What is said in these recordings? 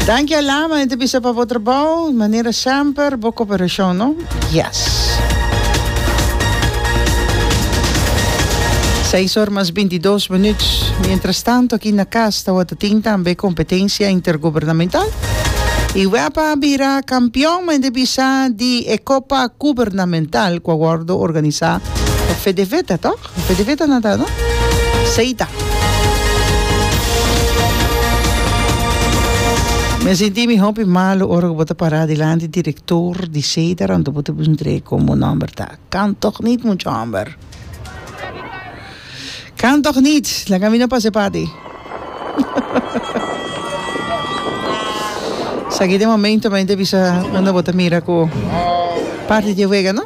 Danki Alama e ta bisa pa bo trabou manera semper bo coperashon no yes. Seis or mas bintidos minuut mientras tanto aki na cas tawata tin tambe competencia intergubernamental y Wepa a bira campeon men ta bisa di e copa gubernamental cu a wordo organisa pa Fedeveta toh. Pidi ku e ta na ta no. Seita. Mi a sinti mi hopi malu ora ku bo ta pará dilanti direktor di Seita rònto bo ta bin trei komo nòmber ta Kan tòg nit mucha hòmber. Kan tòg nit laga mi no pase pati. Esaki ta e momento men ta bisa unda bo ta mira ku parti di e wega no.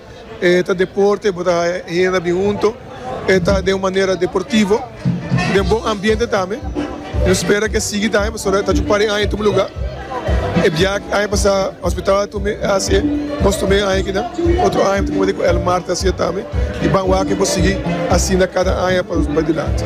E ta deporte, bo ta haya henda bin hunto, e ta den un manera deportivo, den bon ambiente tambe. Nos spera cu e sigui tambe pasobra e ta djupa den aña tucu lugar. E biaha aña pasá Hospitaal Atumbe a hacié, costumé aña aki nan, otro aña ta cuminda cu El Mar ta hacié tambe y ban wak e por sigui asina cada aña pa nos bai dilanti.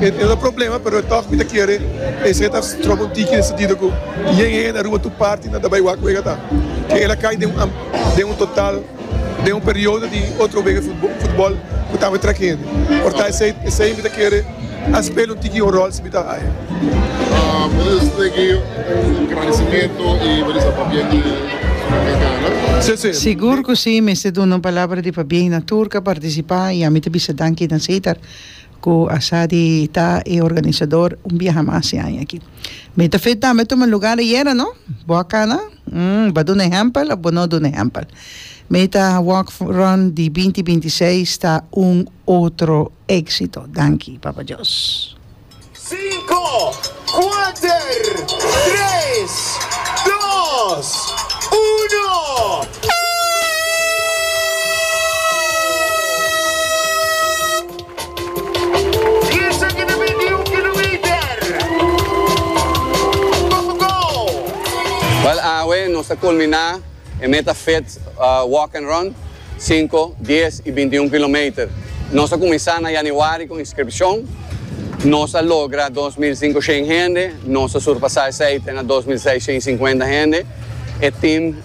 E ta problema pero e tog mi ta kere esei ta trobo un tiki den sentido ku yen hende na Aruba tur parti nan ta bai wak wega ta ke el a kai den un den un total den un periodo di otro wega di futbol ku tambe trek hende por ta esei esei mi ta kere a spela un tiki un rol si mi ta haya. Sese. Sigur ku si mester duna un palabra di pabien na tur ka partisipa i ami ta bisa danki na Cesar. Ku Asadi ta e organisador un biaha mas e aña aki. Mi ta fe tambe tuma lugar ayera, no? Bo a kana? Umm, bo a duna e hèmpel òf bo no a duna e hèmpel? Meta Walk Run di binti binti seis ta un otro éksito. Danki, Papa Dios. Cinco, cuater, tres, dos, uno. Bal awe nos ta culmina. E meta fit Walk and Run, sinku, dies i binti un kilometer. Nos a kuminsá na yanüari ku inskripshon. Nos a logra dos mil sinku shen hende. Nos a surpasá esei te na dos mil seis shen i sinkuenta hende. E tim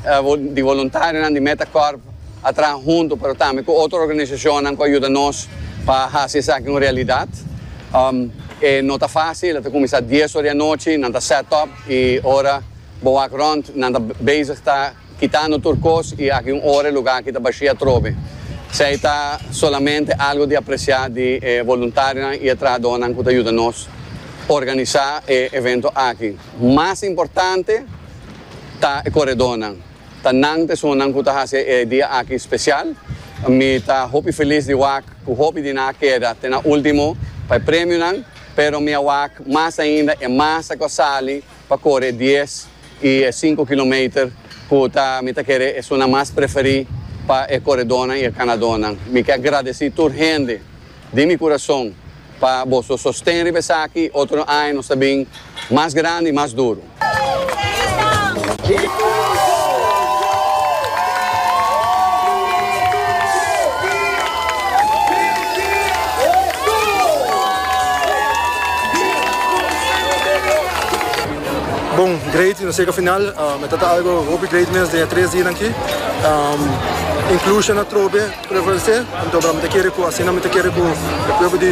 di voluntarionan di Meta Corp a traha huntu pero tambe ku otro organisashonnan ku a yuda nos pa hasi esaki un realidat. E no ta fásil, e ta kuminsá dies ora di anochi, nan ta set up i ora. Bo wak rònt, nan ta bezig ta kitando tur kos i aki un ora e lugá aki ta bashí atrobe. Esei ta solamente algu di apresiá di e voluntarionan i e trahadónan ku ta yuda nos organisá e evento aki. Mas importante ta e koredónan. Ta nan ta esunnan ku ta hasi e dia aki spesial. Mi ta hopi felis di wak ku hopi di nan a keda te na último pa e premionan, pero mi a wak mas ainda e masa ku a sali pa kore dies i e sinku kilometer ku ta mi ta kere esunnan mas preferí pa e koredónan i e kanadónan. Mi ke gradesí tur hende di mi kurason pa boso sosten riba esaki. Otro aña nos ta bin mas grandi i mas duru. Bon, great, nos yega final. Um, het ta algo hopi great mens den tres dinan ki. Um, inclusion atrobe prevalece. Entonces, mi te kere ku asina mi te kere ku e pueblo di